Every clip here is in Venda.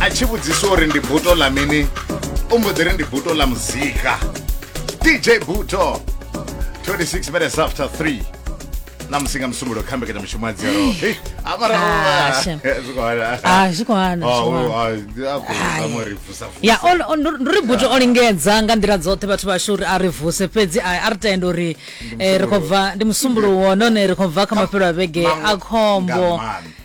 a tshi vhudziswa uri ndi buto ḽa mini u mbo ḓi ri ndi buto ḽa muzika dj buto 26 minutes after 3 na musi nga musumbulo kha mbekanyamushumo ya dzero Hey, a mara Ah, u- shem. zwi khou hana. Ah, zwi khou hana, Oh, zwi khou u- hana. ah, a khou Ai. zama uri vusa, vusa. ya o- o- ndo- ndo ri buto o lingedza nga nḓila dzoṱhe vhathu vhashu uri a ri vuse fhedzi a a ri tenda uri eh, ri khou bva ndi musumbuluwo nahone ri khou bva kha mafhelo a vhege Maṅwe a khombo nga maanḓa.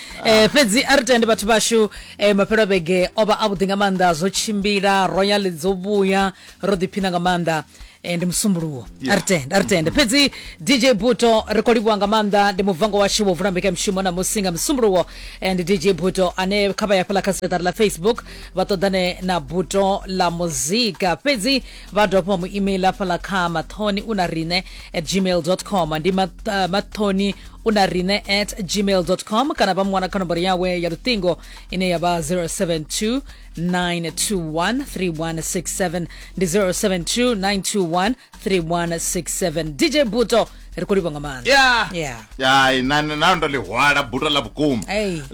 eh fhedzi a ri tende vhathu vhashu eh mafhelo vhege o vha a vhuḓi nga maanḓa zwo tshimbila royal dzo vhuya ro ḓiphina nga maanḓa eh, ndi musumbuluwo a ri tende a ri tende fhedzi dj buto ri khou livhuwa nga maanḓa ndi muvango washu wo vula mbekanyamushumo namusi nga musumbuluwo eh, ndi dj buto ane kha vha ya fhaḽa kha seṱari ḽa facebook vha ṱoḓane na buto ḽa muzika fhedzi vha dovha vha mu email hafhaḽa kha mathoni u na riṋe at gmail com ndi eh, mathoni u na riṋe at gmail com kana vha mu wana kha nomboro yawe ya luṱingo ine ya vha 072 921 ndi 072 921 3167 dj buto ri khou livha nga maanḓaai nao ndo ḽihwala buto ḽa vhukuma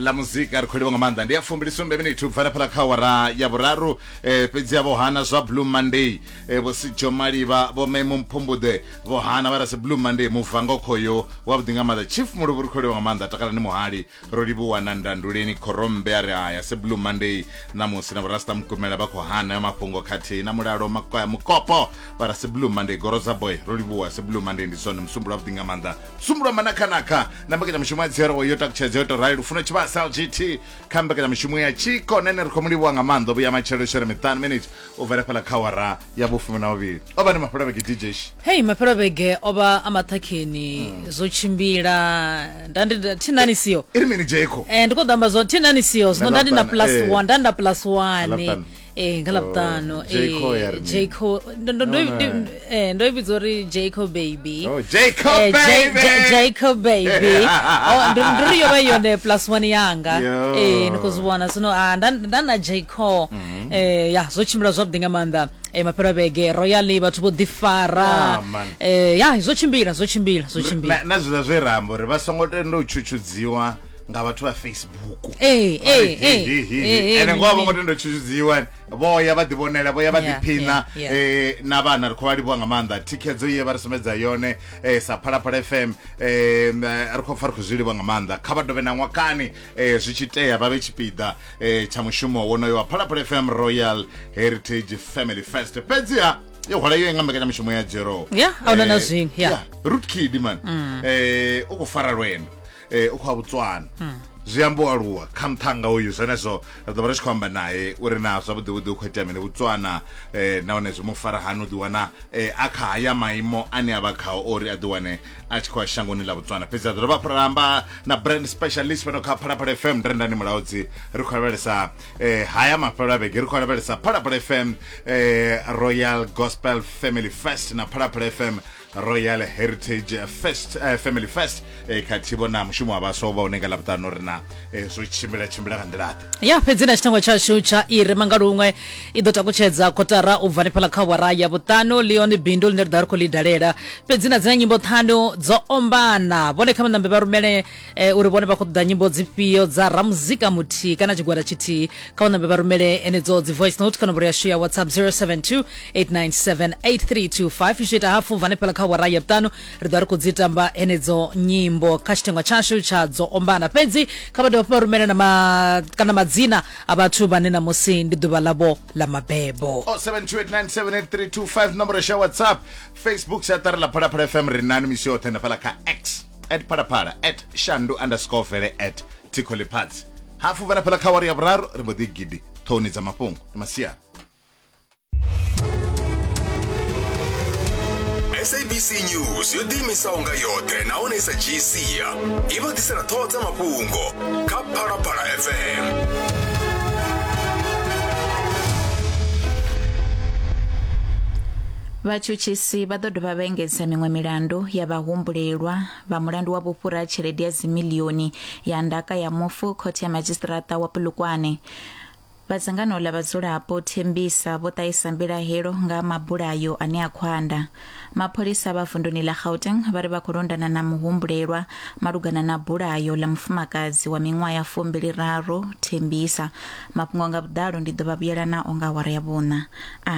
ḽa muzika ri khou livha nga maanḓa ndi ya fumbili sumbe minithu u bva na phala kha wara ya vhuraru Eh, fhedzi vho hana zwa blue monday eh, vho sijo malivha vho memo mphumbuḓe vho hana vha rasi blue monday muvango khoyo wavhuḓi nga maanḓa chief muluvhu ri kholiwa nga maanḓa takalani muhali ro livhuwa na ndanduleni khorombe a ri haya si blue monday ṋamusi na vhorasta mukumela vha khou hana ya mafhungo khathihi na mulalo makoya mukopo vha rasi blue monday goro dza boy ro livhuwa si blue monday ndi zwone musumbulo wavhuḓi nga maanḓa musumbulo wa manakhanakha na mbekanyamushumo ya dzero yo takutshedza yo to rali lufuno tshivhasa lgt kha mbekanyamushumo ya tshiko nene ri khou mu livhuwa nga maanḓa vhuya matshelo shere miṱanu minutes u bvela fhala kha wara ya vhufumi na vhuvhili o vha ni mafhelobeke dj hei mafhelobeke o vha a maṱhakheni hmm. zwo tshimbila nda ndi thinani siyo i ri mini jeko e eh, ndi khou ḓamba zwo thinani siyo zwino nda ndi na plus eh. one nda ndi na plus one ee nga ḽavhuṱanu Oh, Jayco ya ri mini? jayco ndo ndo- ndo- No, no. ndo- eh, ndo i vhidza uri jayco baby Oh, Jayco Eh, Jay- baby! Jay- jayco baby Oh, ndo ndo ri yo vha yone plus one yanga Yo. Eh, ni khou zwi vhona zwino ah, nda nda na jayco Mhm. Eh, ya zwo tshimbila zwavhuḓi nga maanḓa Eh, mafhelo a vhege royally vhathu vho ḓifara Ah, man. Eh, ya zwo tshimbila zwo tshimbila zwo tshimbila na na zwiḽa zwe ra amba uri vha songo tenda u tshutshudziwa nga vhathu vha facebook eh, eh, eh, ene ngoho vho ngo tenda tshutshudziwa vho ya vha ḓivhonela vho ya vha ḓiphina na vhana ri khou vha livhuwa nga maanḓa thikhedzo ye vha ri sumbedza yone sa phalaphala fm ri khou pfa ri khou zwi livhuwa nga maanḓa kha vha dovhe na ṅwakani zwi tshi tea vha vhe tshipiḓa tsha mushumo wonoyo wa phalaphala fm royal heritage family first fhedziha yo hwala yo inga mbekanyamushumo ya jero ya ahuna na eh, zwiṅwe ya rootkid man mm. eh, u khou fara lwendo eh, u khou a botswana hmm. zwi amba u aluwa kha muṱhanga uyu zwenezwo ri ḓo vha ri tshi khou amba naye uri na zwavhuḓivhuḓi u khou itea mini botswana um eh, nahone zwi mu fara hani u ḓiwana um a kha haya maimo ane a vha khao uri a ḓiwane a tshi khou a shangoni ḽa botswana fhedzi a ḓo dovha ra amba na brand specialist fhano kha phalaphala fm ndi rendani mulaudzi ri khou lavhelesa um haya mafhelo a vhege ri khou lavhelesa phalaphala fm um royal gospel family fest na phalaphala fm royal heritage first uh, family first eh, khathihi vhona mushumo wa vhaswa uvha une nga ḽavhuṱanu uri na eh, zwo tshimbila tshimbila nga nḓila ḓe ya fhedzi na tshitangwa tshashu tsha iri manga luṅwe i ḓo takutshedza kotara u bva hanefhala kha wara ya vhuṱanu leon bindu ḽine ri ḓa ri khou ḽi dalela fhedzi na dzina nyimbo ṱhanu dzo ombana vhone kha maṋambe vha rumele e, uri vhone vha khou ṱoḓa nyimbo dzifhio dza ramuzika muthihi kana tshigwada tshithihi kha u ṋambe vha rumele enedzo dzi voice note kha nomboro yashu ya whatsapp 072 897 8325 zwi ita hafu vane fhela kha wara ya vhuṱanu ri ḓo ri khou dzi tamba enedzo nyimbo kha tshithengwa tshashu tsha dzo ombana fhedzi kha vha dovha fhuma rumele na ma, kana madzina a vhathu vhane na musi ndi ḓuvha ḽavho ḽa mabebo 0728978325 nomboro ya whatsapp facebook siatari la phalaphala fm ri nani misi yoṱhe na fhala kha x at phalaphala at shandu underscore vele at thikho ḽifhadzi hafu vha na fhaḽa kha wari ya vhuraru ri mbo ḓi gidi ṱhohoni dza mafhungo ndi masiari sabc news yo ḓiimisaho nga yoṱhe nahone sa dzhii sia i vha ḓisela ṱhoho dza mafhungo kha phalaphala fm Vhatshutshisi vha ḓo dovha vha engedza miṅwe milandu ya vhahumbulelwa vha mulandu wa vhufhura ha tshelede ya dzimilioni ya ndaka ya mufu khothe ya madzhisiṱiraṱa wa Polokwane. Vha dzangano ḽa vhadzulapo Thembisa vho ṱahisa mbilahelo nga mabulayo ane a khwanda. Mapholisa vha vunduni ḽa Gauteng vha ri vha khou londana na muhumbulelwa malugana na bulayo ḽa mufumakadzi wa miṅwaha ya fumbili raru Thembisa. Mafhungo nga vhuḓalo ndi ḓo vha vhuyela nao nga awara ya vhuṋa. A.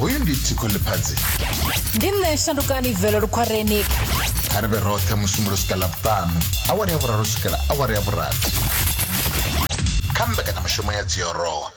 hoyu ndi tsiko ḽifhadzi ndi nṋe shandukani velo lukhwareni kha ri vhe roṱhe musumbulo u swika ḽavhuṱanu awara ya vhuraru u swikela awara ya vhurathi kha mbekanyamushumo ya dziorowa